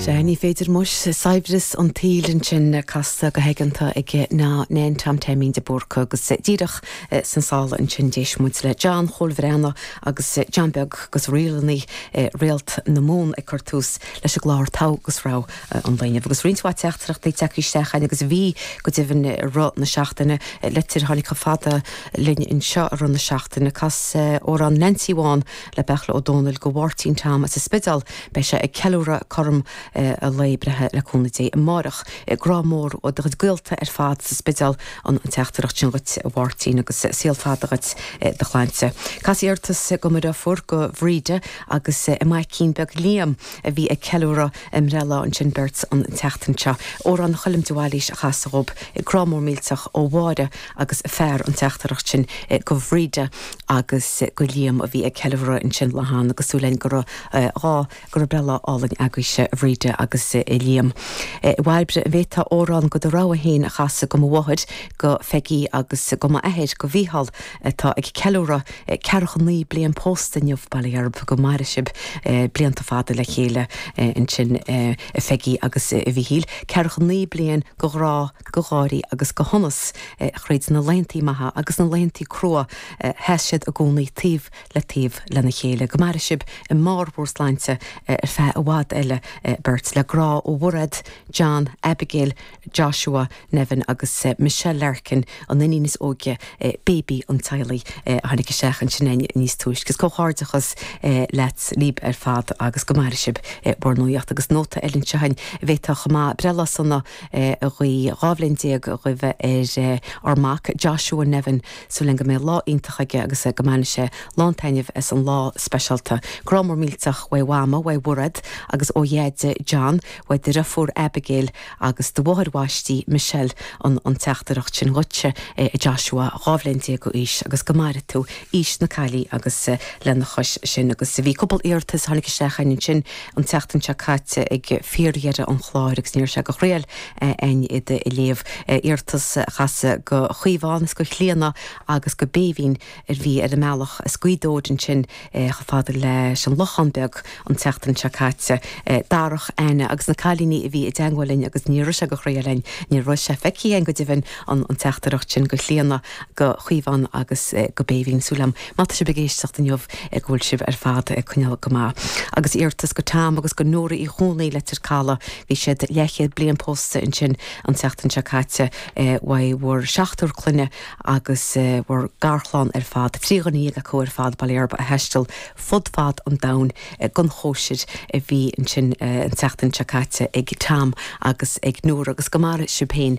Sea, ní féidir. Muis, Saibhreas an tsaoil ansin casta go haigeanta ag Nan Tom Taimín de Búrca agus díreach san sála ansin d'éist muid le John Chóil Bhreathnach agus John Beag agus Ríleanna Réalt na Mumhan ag cur tús leis an gclár, Togha agus Rogha an lae inniu agus roinnt mhaith teachtaireachtaí ag teacht isteach cheana agus bhí go deimhin i rith na seachtaine, litir a tháinig chomh fada linn anseo i rith na seachtaine, cas amhrán Neainsín Bhán. le Beartla Ó Dónaill go Mháirtín Tom as an Spideál, beidh sé ag ceiliúradh cothrom a lae breithe le cúnamh Dé amárach. Grá mór ó do chuid gaolta ar fad sa Spideál an teachtaireacht sin dhuit a Mháirtín agus saol fada dhuit i do shláinte. Cas iarratas go mo dhriofúr go Bhríde agus a maicín beag Liam a bhí ag ceiliúradh a mbreithlá ansin beirt, an tseachtain seo. Amhrán Choilm de Bhailís a chas dhób. Grá mór millteach ó Mháire agus fear an teachtaireacht sin go Bhríde agus go Liam a bhí ag ceiliúradh ansin leo agus súil again go raibh dhá go raibh breithlá álainn agaibhse a Bhríde agus a Liam. A Bhairbre, an bhféadfá amhrán go do rogha féin a chasadh go mo mháthair, go Pheigí agus go mo athair, go Mhícheál atá ag ceiliúradh ceathracha naoi mbliana pósta inniu bail ó Dhia oraibh go maire sibh blianta fada le chéile ansin a Pheigí agus a Mhíchíl ceathracha naoi bliain go ghrá go gháirí agus go shonas, thríd na laethantaí maithe agus na laethantaí crua, sheas siad i gcónaí taobh le taobh lena chéile. Go maire sibh i mbarr bhur sláinte ar feadh i bhfad eile beirt. Le grá ó Mhairéad, John, Abigail, Joshua, Nevin agus Michelle Larkin, an iníon is óige, baby an teaghlaigh, a tháinig isteach ansin níos túisce. Is comhghairdeachas leat, libh, ar fad agus go maire sibh bhur nuaíocht. Agus nóta eile anseo, an bhféadfá chomh maith breithlá sona, a ghuí dhá bhliain déag, a ghuibhe ar ár mac, Joshua Nevin, súil againn go mbeidh lá iontach aige agus go mbainfidh sé lán taitnimh as an lá speisialta. Grá mór millteach uaidh Mhama, uaidh Mhairéad agus ó Dheaide John, uaidh do dheirfiúr Abigail agus do mháthair bhaistí Michelle an teachtaireacht sin dhuitse a Joshua, dhá bhliain déag d'aois agus go maire tú aois na caillí agus lena chois sin agus bhí cúpla iarratas a tháinig isteach ansin an tseachtain seo caite ag fíordheireadh an chláir agus ní raibh sé de thriail a'inn iad a léamh, iarratas a chasadh go Caomhán is go Clíodhna agus go Béibhinn a bhí ar a mbealach as Gaoth Dobhair ansin chomh fada leis an Lochán Beag an tseachtain seo caite, Darach, Áine agus na cailíní a bhí i dteagmháil linn agus ní raibh sé de thriail a'inn, ní raibh sé feicthe a'inn go deimhin an teachtaireacht sin go Clíodhna. go Caomhán agus go Béibhinn. Súil agam má tá sibh ag éisteacht inniu go bhfuil sibh ar fad ag coinneáil go maith. Agus iarrtas go Tom agus go Nóra Uí Chuanaí, Leitir Caladh. Bhí siad leathchéad bliain pósta ansin an tseachtain seo caite. Uaidh bhur seachtar clainne agus bhur garchlann ar fad, trí dhuine dhéag acu ar fad bailithe, a thaistil fud fad an domhain don chóisir a bhí ansin an tseachtain seo caite ag Tom agus ag Nóra. Agus go maire sibh féin.